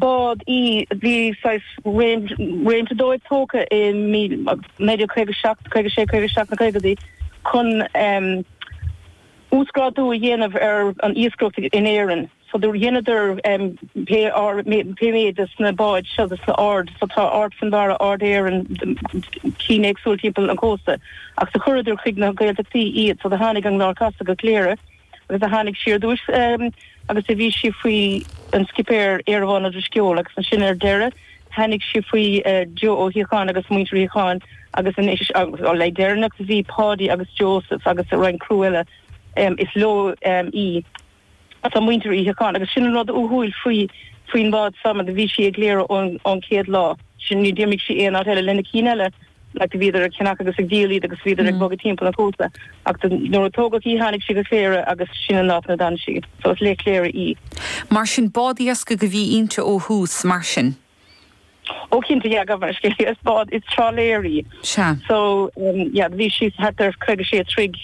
bád í. Bhí saghas réimse dóibh tógtha i naoi déag 1957, 56, 57 sna caogaidí chun uasghrádú a dhéanamh ar an iascaireacht in Éirinn. So do dheineadar pé méid de sna báid seo de sna ard. So tá Ard Fionnbarra, Ard Éireann, cinn éagsúla timpeall an chósta ach do chuireadar chuig na Gaeltachtaí iad. So do tháinig an tArd Casta go Cléire. agus do tháinig sí ar dtúis agus a bhí sí faoi an scipéir Iarnhán Ó Drisceoil agus ansin ar deireadh tháinig sí faoi Joe Ó Shíocháin agus muintir Uí Shíocháin agus anois an leis an deireanach bhí Páidí agus Joseph agus roinnt criú eile is leo í is ea muintir Uí Shíocháin agus sin an rud uathúil faoi faoin mbád so mar bhí sí i gCléire ón chéad lá sin ní d'imigh sí aon áit eile leis na cinn eile like bhíodar ag ceannach agus ag díol iad agus bhíodar ag bogadh timpeall an chósta ach do nuair a tógadh í tháinig sí go Cléire agus sin an áit inar fhan sí. So is le Cléire í. Mar sin bád iascaigh a bhí inti ó thús, mar sin. Ó cinnte yeah gabh mo leithscéal is bád is trálaeir í. Sea. So yeah bhí sí thart ar 56 troigh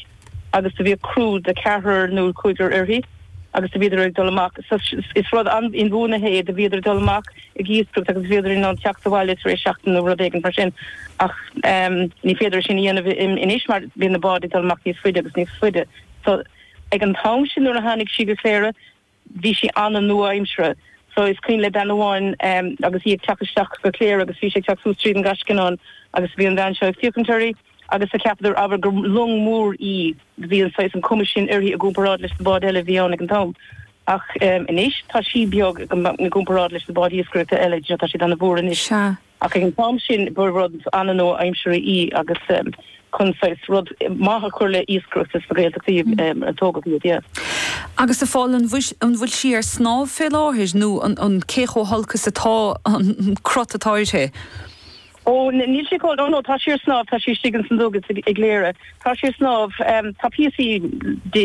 agus do bhíodh criú de cheathrar nó cúigear uirthi agus do bhíodar ag dul amach, is rud inbhuanaithe é, do bhíodar ag dul amach ag iascaireacht agus bhíodar in ann teacht abhaile tar éis seachtain nó rud éigin mar sin ach ní féidir sin a dhéanamh anois mar bíonn na báid ag dul amach níos faide agus níos faide so ag an t-am sin nuair a tháinig sí go Cléire bhí sí an-nua-aimseartha so is cuimhin le bean amháin agus í ag teacht isteach go Cléire agus bhí sí ag teacht suas tríd an nGascanán agus bhí an bhean seo ag féachaint uirthi agus do cheapadar abair gur long mhór í do bhí an saghas an cuma sin uirthi i gcomparáid leis na báid eile a bhí ann ag an t-am ach anois tá sí beag i gcomparáid leis na báid iascaireachta eile tá siad ana-mhór anois. Sea, Ach ag an t-am sin ba rud an-nua-aimseartha í agus chun saghas rud maith a chur le iascaireacht sna Gaeltachtaí a tógadh iad. Agus a Phóil, an bhfuil sí ar snámh fé láthair nó an cé chomh holc is atá an cruth atá uirthi? Ó, níl sí chomh, ó no, tá sí ar snámh, tá sí istigh ins an dug i gCléire. Tá sí ar snámh, tá píosaí di.